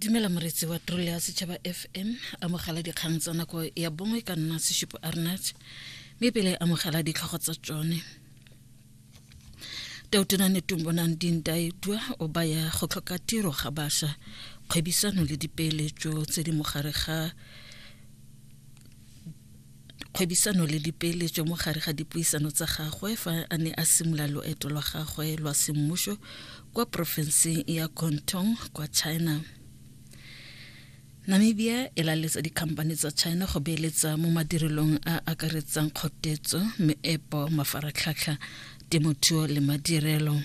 dumela moretsi wa trole ya setšhaba fm amogela dikgang tsa nako ya bongwe ka nna seshupo arnat mme pele amogela ditlhogo tsa tsone tautunane tumbonang dintaedwa o baya go tlhoka tiro ga bašwa kgwebisano le dipeeletso tse di mogare ga kgwebisano le dipeeletso mo gare ga dipuisano tsa gagwe fa a ne a simolola loeto lwa gagwe lwa semmuso kwa porofenseng ya Guangdong kwa China. Namibia e laletsa dikhamphane tsa China go beeletsa mo madirelong a akaretsang kgotetso, meepo, mafaratlhatlha, temothuo le madirelo.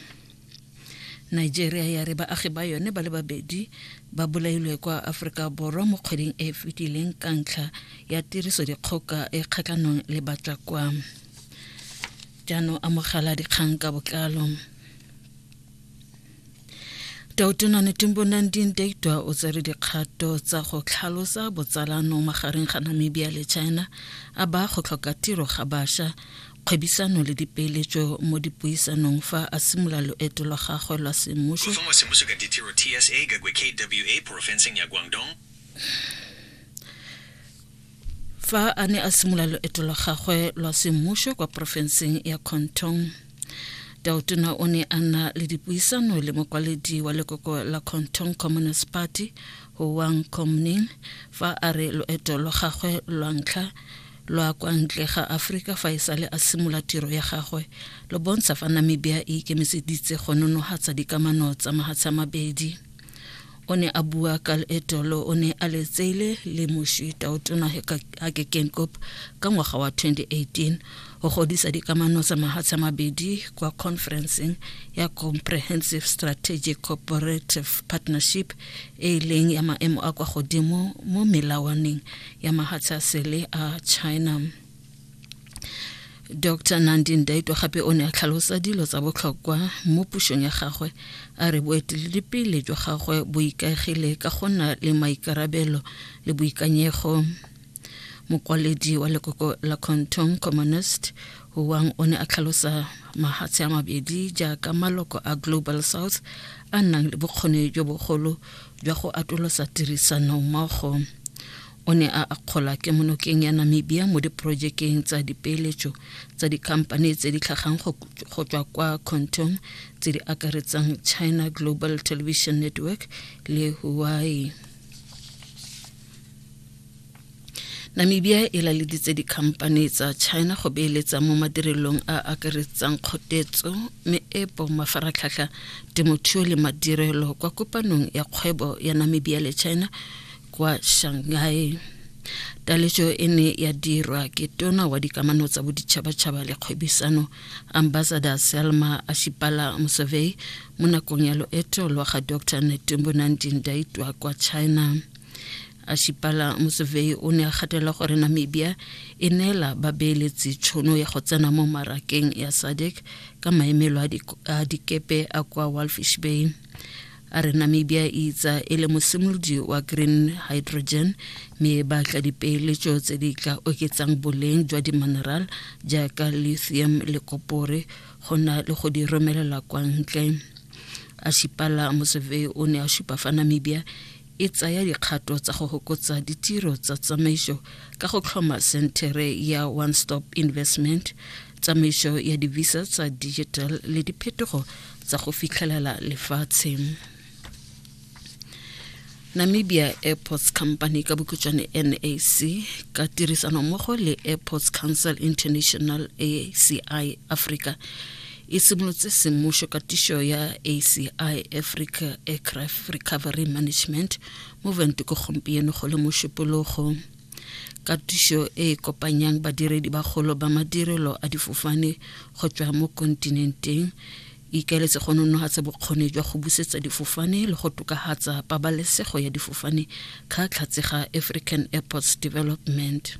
Nigeria ya re baagi ba yone ba le babedi ba bolailwe kwa Aforika Borwa mo kgweding e e fetileng ka ntlha ya tiriso dikgoka e kgatlhanong le batla kwa jaanong amogela dikgang ka botlalo Tautona Netumbo Nandini Ndaitwah o tsere dikgato tsa go tlhalosa botsalano magareng ga Namibia le China a ba go tlhoka tiro ga basha kgwebisano le dipeeletso mo dipuisanong fa a simola loeto lwa gagwe lwa semmuso Gofengwa semmuso ka ditiro TSA ka kwe KWA porofenseng ya Guangdong. fa a ne a simola loeto lwa gagwe lwa semmuso kwa porofenseng ya Kontong. Tautona o ne a na le dipuisano le mokwaledi wa lekoko la Kontong Communist Party, Huang Komning, fa a re loeto lwa gagwe lwa ntlha lwa kwa ntle ga Afrika fa e sale a simola tiro ya gagwe lo bontsha fa Namibia e ikemiseditse go nonohatsa dikamano tsa mahatsha mabedi. O ne a bua ka leeto lo o ne a letseile le moši taotona Hage Geingob ka ngwaga wa 2018 go godisa dikamano tsa mahatsha mabedi kwa conferenceng ya Comprehensive Strategic Cooperative Partnership e e leng ya maemo a kwa godimo mo melawaneng ya mahatsha sele a china dr nandi ndaitwa gape o ne a tlhalosa dilo tsa botlhokwa mo pusong ya gagwe a re boeteledipele jwa gagwe bo ikaegile ka go nna le maikarabelo le boikanyego mokwaledi wa lekoko la conton communist wang o ne a tlhalosa mahatshe a mabedi jaaka maloko a global south a nang le bokgoni jo bogolo jwa go atolosa tirisano mmogo o ne a akgola ke monokeng ya namibia mo diporojekeng tsa dipeeletso tsa dikhamphane tse di tlhagang go tswa kwa contong tse di akaretsang china global television network le huawei namibia e laleditse dikhamphane tsa china go beeletsa mo madirelong a akaretsang kgotetso meepo mafaratlhatlha temothuo le madirelo kwa kopanong ya kgwebo ya namibia le china kwa shanghai taletso e ne ya dirwa ke tona wa dikamano tsa boditšhabatšhaba le kgwebisano Ambassador Selma Ashipala Musovei mo nakong ya loeto lwa ga Dr Netumbo Nandi Ndaitwa kwa China. Ashipala Musovei o ne a gatela gore Namibia e neela babeeletsi tshono ya go tsena mo marakeng ya SADC ka maemelo a dikepe a kwa Walfish Bay. a re namibia e itsa e le mosimolodi wa green hydrogen mme ba tla dipeeletso tse di tla oketsang boleng jwa dimineral jaaka lithium le kopore go na le go di romelela kwa ntle a šipala moseve o ne a šupa fa namibia e tsaya dikgato tsa go hokotsa ditiro tsa tsamaiso ka go tlhoma sentere ya one stop investment tsamaiso ya divisa tsa digital le diphetogo tsa go fitlhelela lefatshe namibia airports company ka bokhutšwane nac ka tirisanommogo le airports council international aci africa e simolotse semmušo katišo ya aci africa aircraft recovery management movement ko gompieno go le mošupologo katišo e e kopanyang badiredi bagolo ba madirelo a difofane go tšwa mo kontinenteng e ikaeletse go nonogatsa bokgoni jwa go busetsa difofane le go tokagatsa pabalesego ya difofane ka tlhatsega african airports development